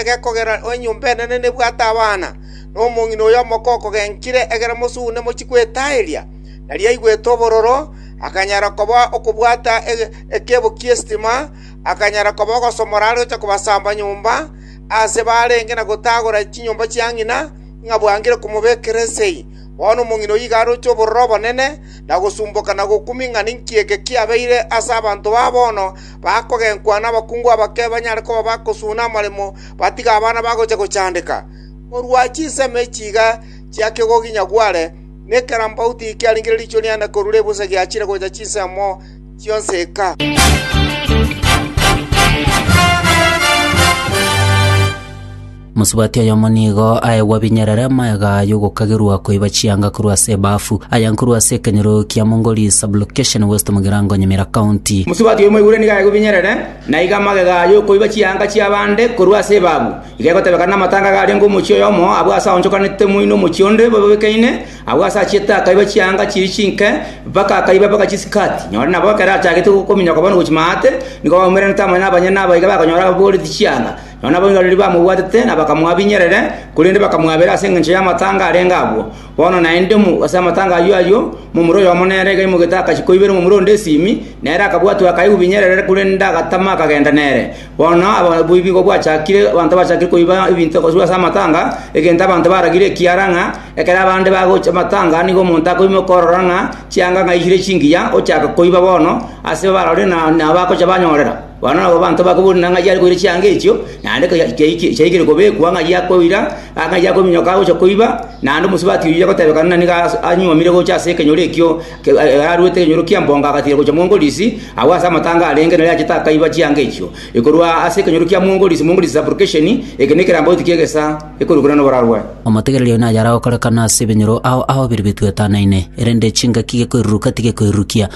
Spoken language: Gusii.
egekogera enyomba enene nebwate abana, na omong'ina oyo omoko okogenkire egere mosugune mochie kwetaeria, nario aigwete obororo, akanyara koba okobwata ekeebo ki'estima, akanyara koba ogosomora are gocha kobasamba nyomba, aase barenge na gotagora chinyomba chia ng'ina, ng'a bwangire komobekera esegi. Bono omong'ina oyio iga aroche obororo obonene, na gosumboka na gokumia ng'a ninki eke kiabeire ase abanto ba bono, bakogenkwa nabakungu abake banyare koba bagosuna amaremo batige abana bagocha gochandeka. Korwa chinsemo echi iga chia Kegogonyagware, nekerambauti kiarengire riichwe riane korure ebusa giachire gocha chinsemo chionsi eka. Mosubati oyomo nigo aegwa binyerere amagega y'ogokagerwa koiba chianga korwa ase ebaafu, aya nkorwa ase ekenyoro kia Mongoli Sub-location West Mugirango Nyamira County. Mosubati oyomo oigure nigo aegwe binyerere, na iga amagega y'okoiba chianga chi'abande korwa ase ebaafu, iga egotebekana namatanga iga arenge omochie oyomo abwo ase aonchokanete moino omochie onde bobekeinie, abwo ase achiete akaiba chianga chiria chinke mpaka akaiba mpaka chisikati. Nyore nabo ekero achagete gokominyoka bono gochia maate, nigo baumerenete amo nabanyene aba iga bakonyora baboreti chianga, Nonya naboiraneri bamobwatete na bakamoabinyerere, korende bakamwabera ase engencho y'amatanga arenge agwo. Bono naende ase amatanga ayio ayio, momura oyomo nere iga aimogete agachie koibera omomura onde esimi, nere akabwatwa akaigubinyerere, korende agatama akagenda nere. Bono oboibi nigo bwachakire, abanto bachakire koiba ebinto koswa ase amatanga, egento abanto baragire ekiara ng'a ekero abande bagocha amatanga nigo omonto akoimoka okorora ng'a chianga ng'aisire chingiya, ochaka koiba bono ase barore na nabagocha banyorera. Bono nabo abanto bakoboria ng'ai are koira chianga echio, naende chiaikire kobekwa, ng'ai akoira, ng'ai akominyoka agocha koiba, naende omosubati oyio agotebekana nani iga anyuomire gocha ase ekenyoro ekio aruete ekenyoro ki'embongo agatiira gocha mwongorisi, agwo ase amatango arenge nari achete akaiba chianga echio. Ekorwa ase ekenyoro kia mwongorisi, mwongorisi suffocation, eke nekerambaoti ki'egesa ekorokire noborarwa. Omotegereri oyo naye aragokorekana ase ebinyoro ao aobirebetwe etanaine, erende chingaki gekoiruruka tigekoirurukia.